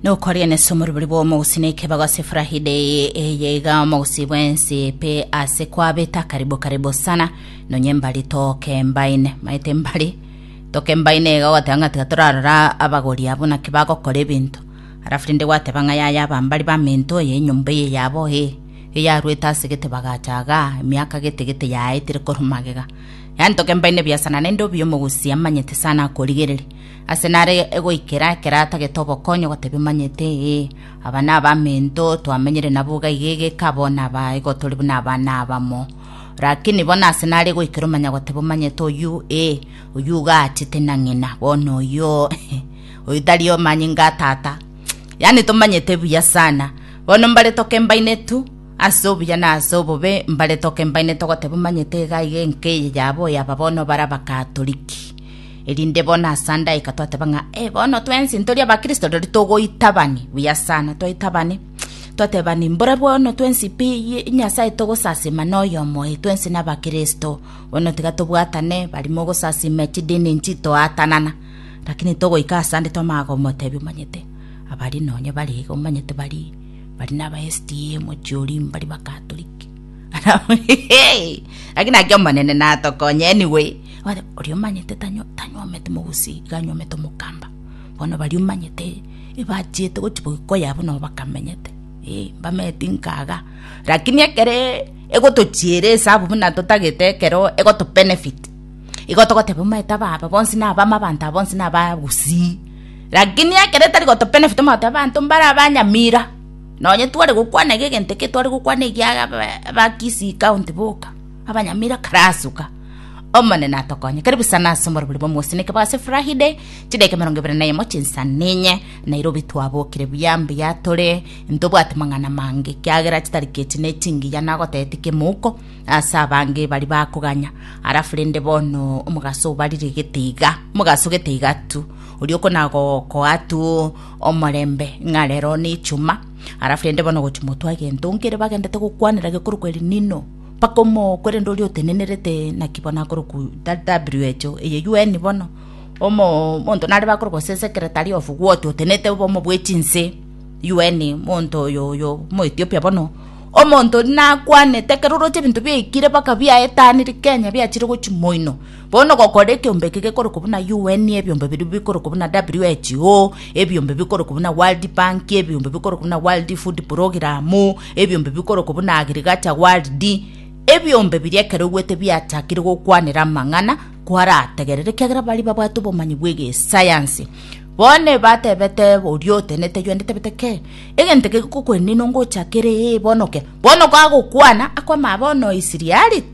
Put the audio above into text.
nokoria nese omoribori bw'omogusi nekebago ase Friday eye iga omogusi bwensi pe ase kwabeta karibu karibu sana nonye mbari toke mbaine maete mbari toke mbaine iga ogoteba ng'a tiga torarora abagori abo naki bagokora ebinto alafu rende gwateba ng'a yaya abambari baminto oye enyomba eye yabo ee eyaruete ase gete bagacha iga emiaka gete gete yaetire korwa magega yaani toke mbaine biasana naende obi omogusi amanyete sana akorigereria Ase nare goikera ekero atagete obokonyi ogotebia omanyete, Ee, aba nabamento twamenyire nabo iga iga egeka abo naba igo tore buna abana abamo. Rakini bono ase nare goikera omanya goteba omanyete oyio, Ee, oyio iga aachete na ng'ina, bono oyio oyio tari omanyinga a tata. Yaani tomanyete buya sana. Bono mbare toke mbainetu ase obuya na ase obobe, mbare toke mbainetu ogoteba omanyete iga iga enka eye yaba oyaba bono bare abakatoriki. erinde bono ase andaika twateba ng'a ee bono twensi ntori abakristo rirorio togoitabani buya sana toitabane twatebani mbore bono twensi pi yi- nyasaye togosasima na oyomo oye twensi na abakristo bono tiga tobwatane bari mogosasima chidini nchi toatanana lakini togoika ase ande twamanya komotebia omanyete abari nonye bari iga omanyete bari bari na aba SDA mochiori mbari bakatoliki lakini naki omonene natokonye anyway Oye- oria omanyete tanyo tanyomete mogusi iga anyomete omokamba bono baria omanyete ebachiete gochi boiko yabo nabo bakamenyete eh, mbameti nkaga lakini ekere egotochiera esabu buna totagete ekero egoto benefit igo togoteba omanyete aba aba bonsi na abama abanto aba bonsi na abagusii lakini ekero etari goto benefit omoteba abanto mbare abanyamira. Nonye tware gokwana iga egento eke tware gokwana egia ba Kisii county boka, abanyamira karasoka. Omonene atokonye, karibu sana ase oborobori bwa omosineke bwa ase Friday, chidakika emerongo ebere na emo chinsa ninye, Nairobi twabokire buya mbuya tore, ntobwati mang'ana mange, kiagera chitariki echi ne chingiya nagotebeti kemouko ase abange bari bakoganya, alafu rende bono omogaso obarire gete iga, omogaso gete iga tu, oria okona gokoa tu, omorembe, ng'a rero nechuma, alafu rende bono gochi motwe agento nkere bagendete gokwanera gekorokwa El Nino, mpaka omoo korende oria otenenerete naki bono akorokwa WHO eye UN bono, omoo monto nare bakorokwa gose secretary of what otenete obomo bwe chinse UN monto oyo oyo omo Ethiopia bono, omonto oria nakwanete ekero oroche ebinto biaikire mpaka biaetanire Kenya biachire gochi moino. Bono gokora ekeombe eke gekorokwa buna UN, ebiombe biria bikorokwa buna WHO, ebiombe bikorokwa buna World Bank, ebiombe bikorokwa buna World Food Program, ebiombe bikorokwa buna Agriculture World, ebiombe biria ekero bigwete biachakire gokwanera amang'ana kwarategerera ekiagera baria babwate obomanyi bw'egesayansi. Bono ebatebete oria otenete UN etebete ke egento eke gikokwenina ongochakere ee bono ke bono gagokwana akwama bono Isiriari